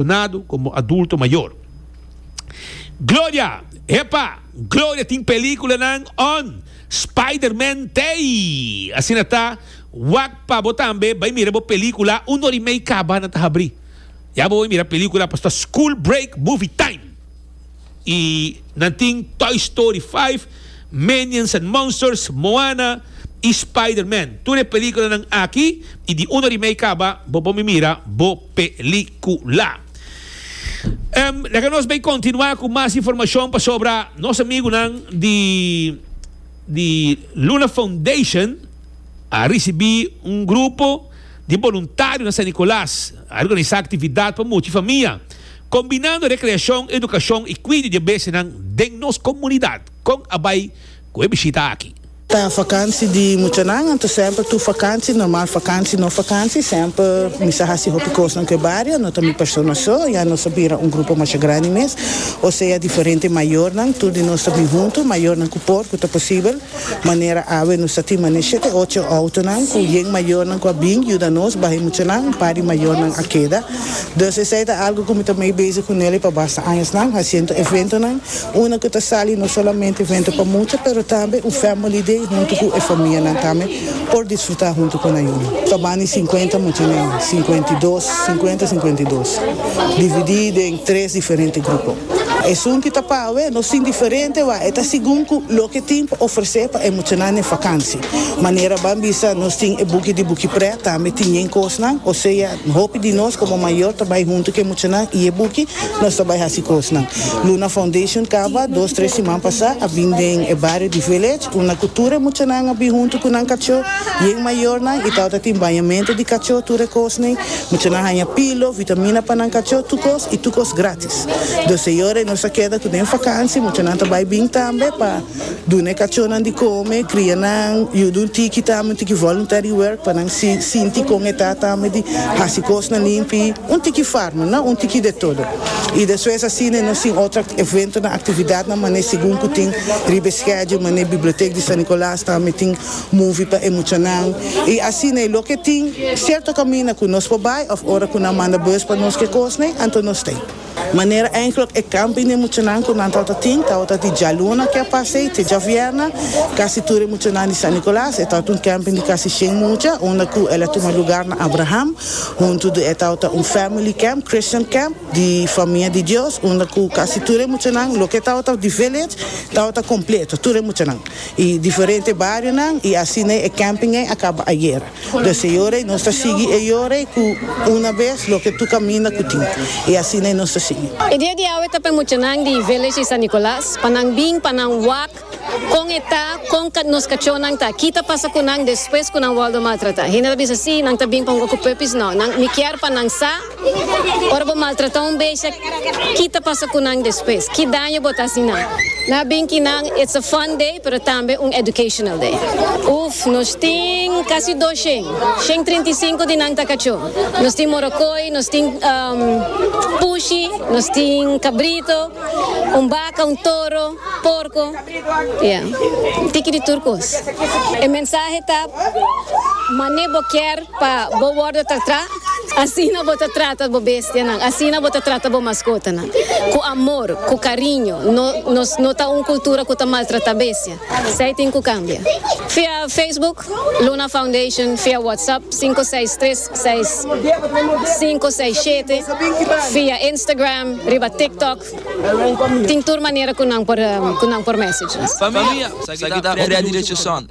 Donado como adulto mayor. Gloria! Epa! Gloria tin peliculanan on Spiderman tey! Asina ta, wak pa bo tambe bay mira bo pelicula un ora y mey caba nan ta habri. Ya bo bay mira pelicula paso ta school break movie time. Y nan tin Toy Story 5, Minions and Monsters, Moana y Spiderman. Tur e peliculanan aki y di un ora y mey caba bo bay mira bo. pelicula. Em, laga nos bay continua cu mas informacion pasobra nos amigunan di, di Luna Foundation a ricibi un grupo di boluntario na San Nicolas. A organisa actividad pa mucha famia, combinando recreacion, educacion y cuido di e bestianan den nos comunidad. Con a bay ku e bishita aki. Ta vakansi di muchanan, anto semper tur vakansi, normal vakansi, no vakansi, semper mi sa hasi hopi kosnan ku e bario, no ta mi persona so, ya nos a bira un grupo masha grandi mes, osea diferente mayornan, tur di nos ta bin huntu, mayornan ku por, ku ta posibel, manera awe nos ta tin manera shete, ocho outonan ku yen mayornan ku a bin yuda nos baha e muchanan, un par di mayornan a keda, dus esei ta algu ku mi ta mei bezig ku Nelly pa basta añasnan, hasiendo eventonan. Una cu ta sali no solamente evento pa mucha pero tambe un family day hunto cu e famianan tambe por disfruta hunto cu nan yuma. Caban di cincuenta muchanan, cincuenta y dos, cincuenta, cincuenta y dos, dividi den tres diferente grupo. Esun ki ta pa awe no sin diferente wak, e ta segun cu loke tin pa ofrece pa e muchanan den vakantie. Manera ban bisa nos tin e buki di Buki Pret tambe tin yen cosnan, o sea, Hopi di nos komo mayor ta bai huntu ku e muchanan i e buki nos ta bai hasi kosnan. Luna Foundation kaba dos tres siman pasá a bin den e bario di Village unda ku tur e muchanan a bin huntu ku nan kachó i e mayornan i tabata tin bañamentu di kachó tur e kosnan. Muchanan haña pilo, vitamina pa nan kachó, tur kos i tur kos grátis. Dos e yora nos ta keda ku den vakansi muchanan ta bai bin tambe pa. Duna e kachónan di kome, kria nan, yuda un tiki ta ame un tiki voluntary work pa nan sinti kon e ta ta ame di hasi kosnan limpi, un tiki farma, no un tiki de todo. I despues asina e no sin otro eventonan, aktividatnan manera segun ku tin riba e schedule, manera bibliotek di San Nicolas ta ame tin movie pa e muchanan i asina i loke tin sierto kaminda ku nos por bai òf ora ku nan manda bus pa nos ke kosnan anto nos ta. Manera enkele e kampi n'e muchanan ku nan tawata tin tawata di djaluna ke pasei te djavièrna, kasi tur e muchanan di San Nicolas e tawata un kèmping di kasi shen mucha unda ku el a tuma lugar na Abraham huntu di e tawata un family camp, Christian camp, di famia di Dios unda ku kasi tur e muchanan loke tawata di village tawata kompleto tur e muchanan i diferente barionan i asina e kèmping ei a kaba ayer. Desde e ora ei nos ta sigui e ora ei cu una bes loke tur caminda cu tin. Y asina ei nos ta sigui. E dia di awe ta pa e muchanan di Village di San Nicolas pa nan bin pa nan wak con e ta, con nos cachonan ta, ki ta pasa cu nan despues cu nan wordo maltrata. Hende ta bisa si, nan ta bin pa un wak cu puppies. No, nan, mi kier pa nan sa. Ora bo maltrata un besha, ki ta pasa ku nan despues? Ki daño bo ta hasi nan? Na bin ki nan it's a fun day pero tambe un educational day. Uf, nos tin kasi dos shen, shen trinta i sinku di nan ta kachó. Nos tin morokoy, nos tin pushi, nos tin kabrito, un baka, un toro, porko, ya, tiki di tur kos. E mensahe ta, mané bo kier Pa bo wòrdu tratá asina bo ta trata bo bestianan, asina bo ta trata bo maskotanan, ku amor, ku kariño. No, nos no ta un kultura ku ta maltratá bestia. Esei tin ku kambia. Via Facebook, Luna Foundation, via WhatsApp, sinku seis tres seis sinku seis shete, via Instagram, riba TikTok, tin tur manera ku nan por, ku nan por mèsage nos. Famia, sa ki ta Freddy Richardson.